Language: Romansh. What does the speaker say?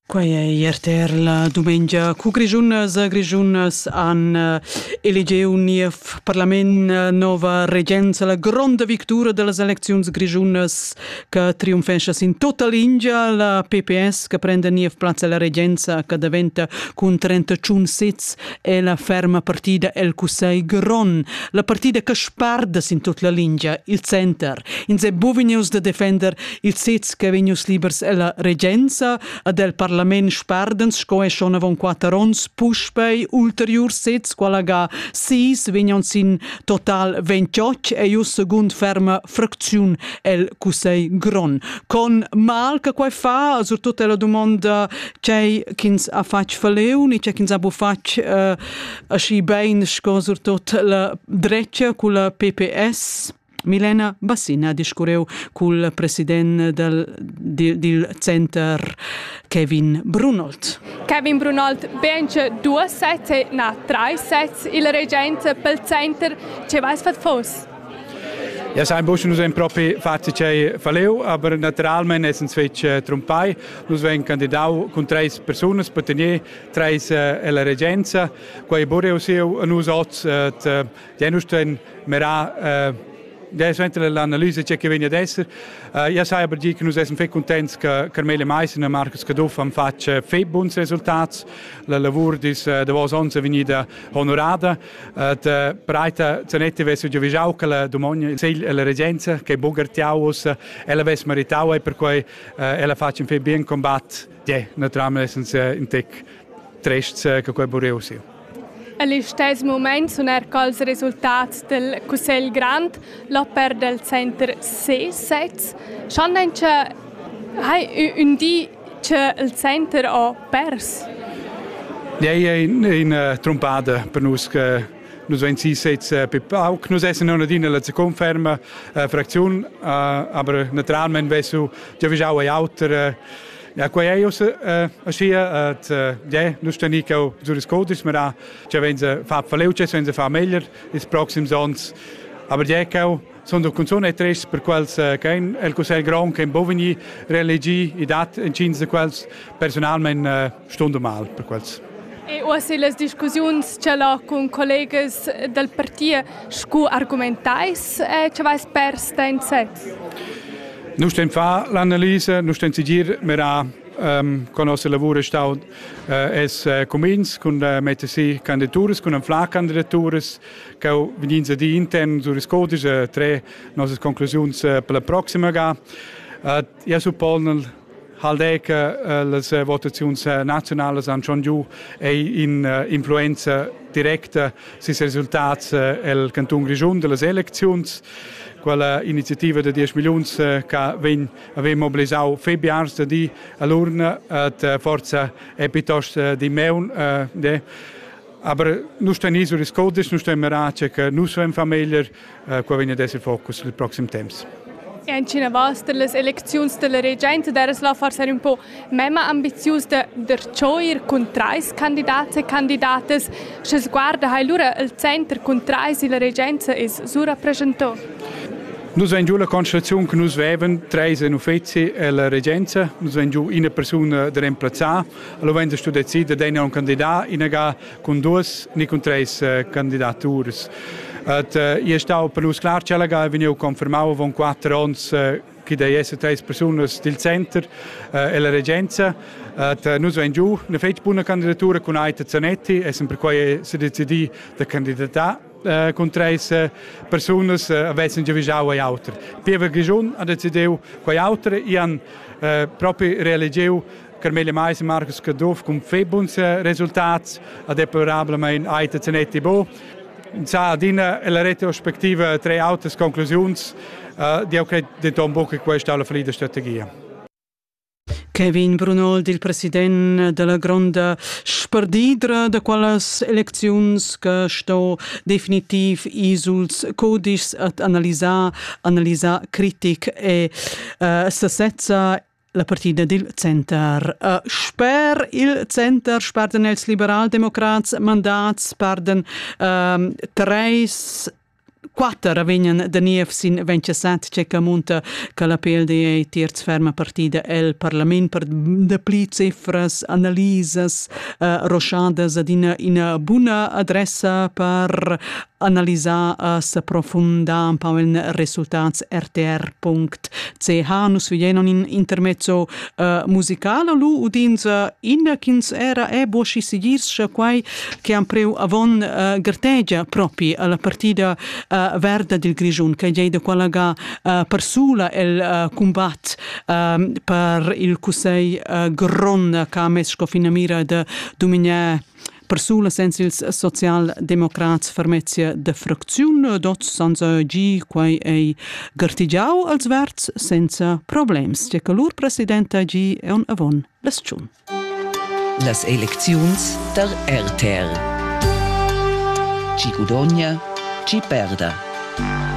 Quai è RTR la dumengia cu Grischunas e Grischunas han eh, eligiu niev parlament eh, nova regenza, la gronda victura delle eleczioni grischunas che triumfesce in tutta linea, la PPS che prende niev plaz alla regenza che diventa con 31 sits è la ferma partita el Cussegl Grond, la partita che sparda in tutta la linea, il center. In se buvineus de defender Il sez ch'è vegnius libers ella regenza ad el parlament sperdens sco è schon avon quatter onns puspei ulteriur sez quala ga sis vegnan sin total 28 e iu secund ferma fracziun el cussegl gron. Con mal che quai fa, surtut è la domanda c'è ch'ins ha fatg faleu, ni c'è ch'ins ha bufatg uh, aschi bein sco surtut la drecia cu la PPS. Milena Bassina ha discurreu cul president dal, dil, dil center Kevin Brunold. Kevin Brunold vence due sets e na tre sets il regent pel center. Ce vais fat fos? Ja, sein Busch nus ein propi fatti chei faleu, aber naturalment essens fetg äh, trumpai. Nus vegn candidau cun treis persunas per tener treis äh, ella regenza. Quei bureu siu a nus oz äh, Ja nu sten mirà ja suenter l'analisa che vegna ad esser. ja sai aber dir che nus essan fetg contents che Carmela Meissen e Marcus Caduff han fatg fetg buns resultats. La lavur dis davos ons è vegnida honorada. da Breita Zanetti vess giu vigiau che la domogna il segl e la regenza che bugartiau us ella vess meritau e per quei ella facen fetg bien combat. Ja, naturalmente essan in tec trests che quei bureu siu. En listess mument sun er cals resultats dal Cussegl grond, l'oper dal center C7, sch'han encha hai ün di che il center ho pers. Ei è ina trumbada per nus che nus vein si sez eh, più pauc. Nus essen adina la conferma eh, fraktion, eh, aber naturalmente vesu ja vischau ei auter. Ja, quai è uss aschia, et ja, nus stani cau Zuriscodis, ma da cha venza fa faleucess, venza fa meglier ils proxims ons. Aber ja, cau sun da cunzun e tres per quels ch'ein el cussegl grond che bovini reelegi i dat entgins da quels personalment stund mal per quels. E uossa las discussiuns ch'el ha cun collegas dal parti scu argumentais e che vais pers da in set? Nu stem far l'analisa, nu stem sigir mirà um, con nossa lavur è stato uh, es uh, cumins con uh, metter si candidaturas, con anflar candidaturas che vegins ad intern sur codice tre nostre conclusioni uh, per la prossima ga. Uh, Eu suppon il Haldec eh, las eh, votaziuns eh, naziunalas han schon giu ei in influenza directa sis resultats el canton Grischun dellas elecziuns quella iniziativa de 10 milliuns che vegn aveva mobilisau Febiars de di all'urna et forza è piuttosto di meun de aber nu sten isu riscodis nu sten merace che nu so in famiglia Qua vegn ad esser focus il proxim temps. E incinavas per las elecziuns dalla regenta deres la forsa un po memma ambizius da vertscheuir cun trais candidats e candidatas. Sche sguarda hai lura il center cun trais e la regenza is surrappreschentò. Nus vein giu la constataziun che nus veven treis en uffizi e la regenza, nus vein giu ina persuna da remplazzar, allora vein stu decider d'ener un candidat, inaga cun duas ni cun treis candidaturas. Et è stau per nus clar ch'ella ha vegniu confermau avon quatter onns che dei esser treis persunas dil center e la regenza. Et nus vein giu una fetg buna candidatura cun Aita Zanetti, essem perquei se decidi da candidatar cun treis persunas avessen giavischau ei auter. Pievel Grischun ha decidiu quei auter, i han propi reelegiu Carmela Mais e Marcus Caduff cun fei buns resultats a deplorablamain Aita Zanetti Bo. Sa adina la retrospectiva tre autas conclusiuns uh, di credo denton buca che questa alla fallida strategia. Kevin Brunol, il president della gronda sperdidra da quelles elecziuns che sto definitiv isuls codices ad analisar, analisar critic e uh, stasezza La partida dil center. Uh, sper il center sparden els liberaldemocrats mandats, sparden um, treis quatter vegnan da niev sin 27 tschecca munta che la PLD ei terz ferma partida el parlament per dapli cifras, analisas, uh, rochadas ad ina, ina buna adressa per analisà a s'approfundar un pau in resultats rtr.ch nus vegnan in intermezzo uh, musicale lu udins uh, in ch'ins era e boschi siguirscha quai che han preu avon uh, gartegia propi alla partida uh, verda dil Grischun che gei da qualaga uh, persula el uh, combat uh, per il cussei uh, gron che ha mes sco finamira de dumignar Persulas en ils socialdemocrats fermezzia de fracziun d'oz sanza gi quai ei gartigiau als verds senza problems. Tge che lur presidenta gi è un avon les tschun. Las elecziuns der RTR. Chi gudogna, chi perda.